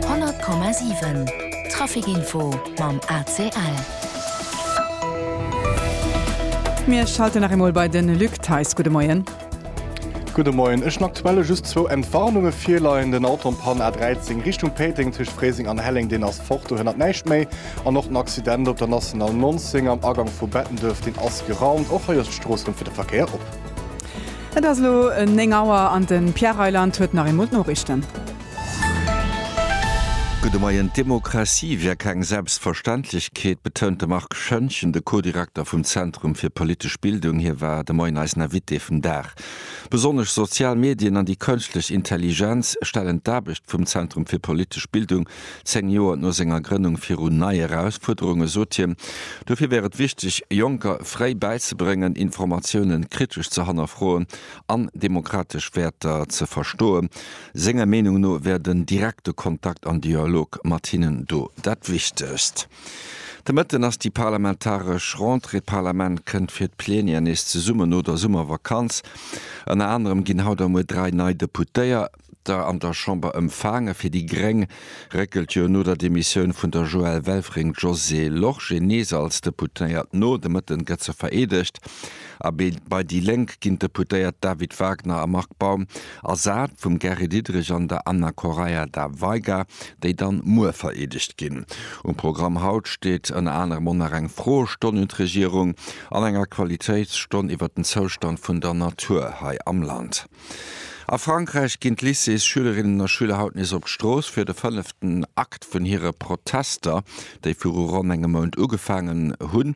100,7 Trafic Info mam ACL. Mir schalten nach eemol bei den Luc Theis. Gudde Moien. Gudde Moien. Ech hun aktuelle just zwou Entwarnunge virleien. Den Auto am Pan A13 Richtung Péiteng tëscht Fréiseng an Helleng, deen ass fort, do hënnert näischt méi. An och den Accident op der National 19 am Agank vu Bettenduerf, deen ass geraumt. Och hei ass d'Strooss rëm fir de Verkéier op. Et ass elo 9 Auer an de Pierre Reyland huet nach eemol d'Noriichten. Gudde Moien. D'Demokratie wier keng Selbstverständlechkeet, betount de Marc Schoentgen, de Co-Direkter vum Zentrum fir politesch Bildung. Hie war de Moien eisen Invité vum Dag. Besonnesch sozial Medien an déi kënschtlech Intelligenz stellen d'Aarbecht vum Zentrum fir politesch Bildung Zéng Joer no senger Grënnung virun nei Erausfuerderunge sot hien, dofir wär et wichteg, Jonker fréi bäizebréngen, Informatiounen kritesch ze hannerfroen an demokratesch Wäerter ze verstoen. Senger Meenung no wär den direkte Kontakt an Dialog mat hinnen do dat Wichtegst. De Mëtten ass déi parlamentaresch Rentrée. D'Parlament kënnt fir d'Plenier nees zesummen no der Summervakanz. Ënner anerem ginn haut a muer dräi nei Deputéiert. der an der Chamber ëmfaange fir déi gréng, réckelt jo no der Demissioun vun der Joëlle Welfring d'Josée Lorsché nees als Deputéiert no. De Mëtten gëtt se vereedegt a bei déi Lénk ginn d'Deputéiert David Wagner a Marc Baum ersat vum Gary Diderich an der Anna Correia da Veiga, déi dann muer vereedegt ginn. Um Programm haut steet ënner anerem och nach eng Froestonn un d'Regierung an eng Aktualitéitsstonn iwwert den Zoustand vun der Natur hei am Land. A Frankräich ginn d'Lycées-Schülerinnen a Schüler haut nees op d'Strooss fir de fënneften Akt vun hire Protester, déi viru ronn engem Mount ugefaangen hunn.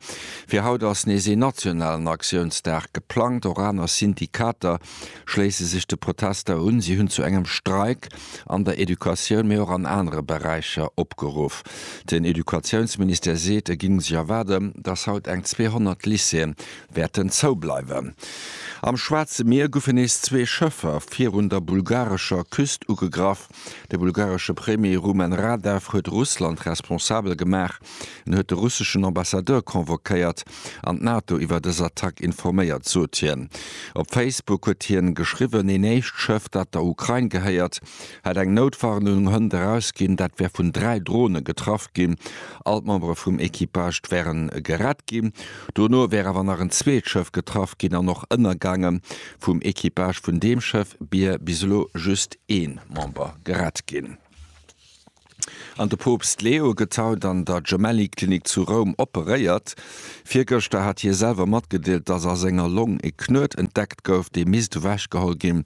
Fir haut ass nees een nationalen Aktiounsdag geplangt. Och aner Syndikater schléisse sech de Protester un. Si hunn zu engem Streik an der Educatioun, mee och an anere Beräicher opgeruff. Den Educatiounsministère seet, e géing sech erwaarden, datt haut eng 200 Lycéeën wäerten zou bleiwen. Am Schwaarze Mier guffe nees zwee Schëffer virun der bulgarescher Küst ugegraff. De bulgaresche Premier Rumen Radev huet Russland responsabel gemaach. En huet de russeschen Ambassadeur convoquéiert an d'NATO iwwer dës Attack informéiert, sot hien. Op Facebook huet hie geschriwwen, een éischt Schëff, dat der Ukrain gehéiert, hätt eng Noutwarnung Hënt erausginn. Dat wär vun dräi Drone getraff ginn. All d'Membere vum Equipage wäre gerett ginn. Dono wär awer nach en zweet Schëff getraff ginn an och ënnergaangen. Vum Equipage vun deem Schëff bier bis elo just ee Member gerett ginn. An de Poopst Leo gëtt haut an der Gemelli-Klinik zu Roum operéiert. Virgëschter hat hie selwer matgedeelt, datt a senger Long e Knuet entdeckt gouf, dee misst ewechgeholl ginn.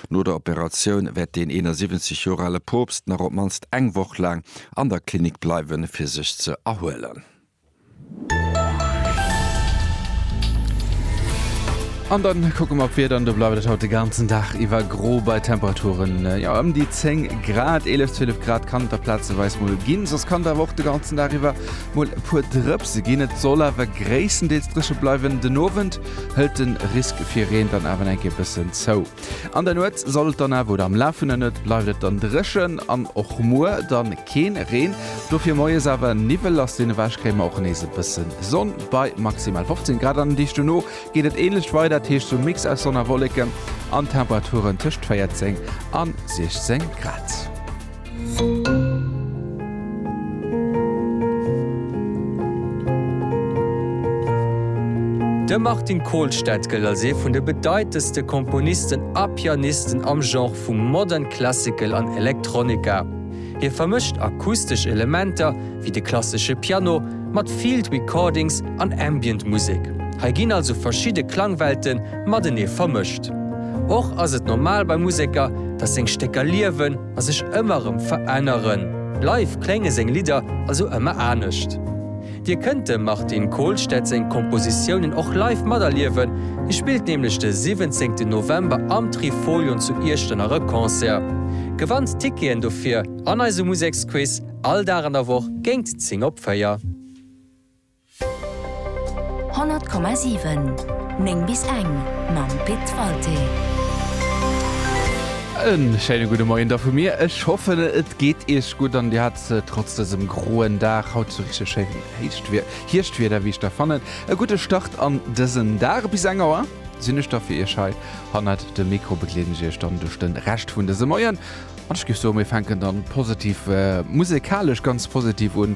No der Operatioun wäert deen 71 Joer ale Poopst nach op d'mannst eng Woch laang an der Klinik bleiwen, fir sech ze erhuelen. An dann kucke mer op d'Wieder an do bleift et haut de ganzen Dag iwwer gro bei Temperaturen jo ëm déi 10 Grad, 11, 12 Grad kann et da plazeweis mol ginn. Soss kann et awer och de ganzen Dag iwwer mol e puer Drëpse ginn. Et soll awer gréisstendeels dréche bleiwen. Den Owend hëlt de Risk fir Reen dann awer eng Kéier e bëssen zou. An der Nuet soll et dann awer, oder am Laf vun der Nuet bleift et dann dréchen an och muer dann keen Reen. Dofir moies awer Niwwel, lass deen ewech kréie mer och nees e bëssen Sonn bei maximal 15 Grad. An den Deeg dono geet et ähnlecht weider, dat heescht sou Mix aus Sonn a Wolleken an Temperaturen tëscht 14 an 16 Grad. De Martin Kolstad gëllt als ee vun de bedeitendste Komponisten a Pianisten am Genre vu Modern Classical an Electronica. Hie vermëscht akustesch Elementer, wéi de klassesche Piano, mat Field Recordings an Ambient Musek. Hei ginn also verschidde Klangwelte matenee vermëscht. Och ass et normal bei Museker, datt seng Stécker liewen. a sech ëmmer erëm veränneren, bleiw klénge seng Lidder also ëmmer anescht. Dir kënnt dem Martin Kolstad seng Kompositiounen och live materliewen, hie spillt nämlech de 17 November am Trifolion zu Iechternach e Concert. Gewannt d'Ticketen dofir an eisem Museksquiz all Dag an der Woch géingt 10 op 4. 100,7 9 bis eng mam Pit Walté. En schéine gudde Moien da vu mir. Ech hoffen et geet iech gutt an dir hat trotz dësem groen Dag haut sou richteg schéin héicht Wier Hierschtwieder wéi ech da fannen. E gudde Start an dësen Dag. Bis eng Auer sinn ech da fir iech hei hannert dem Mikro, begleeden ech iech dann duerch de Rescht vun dësem Moien an ech géif soe mir fänken dann positiv musekalesch ganz positiv un.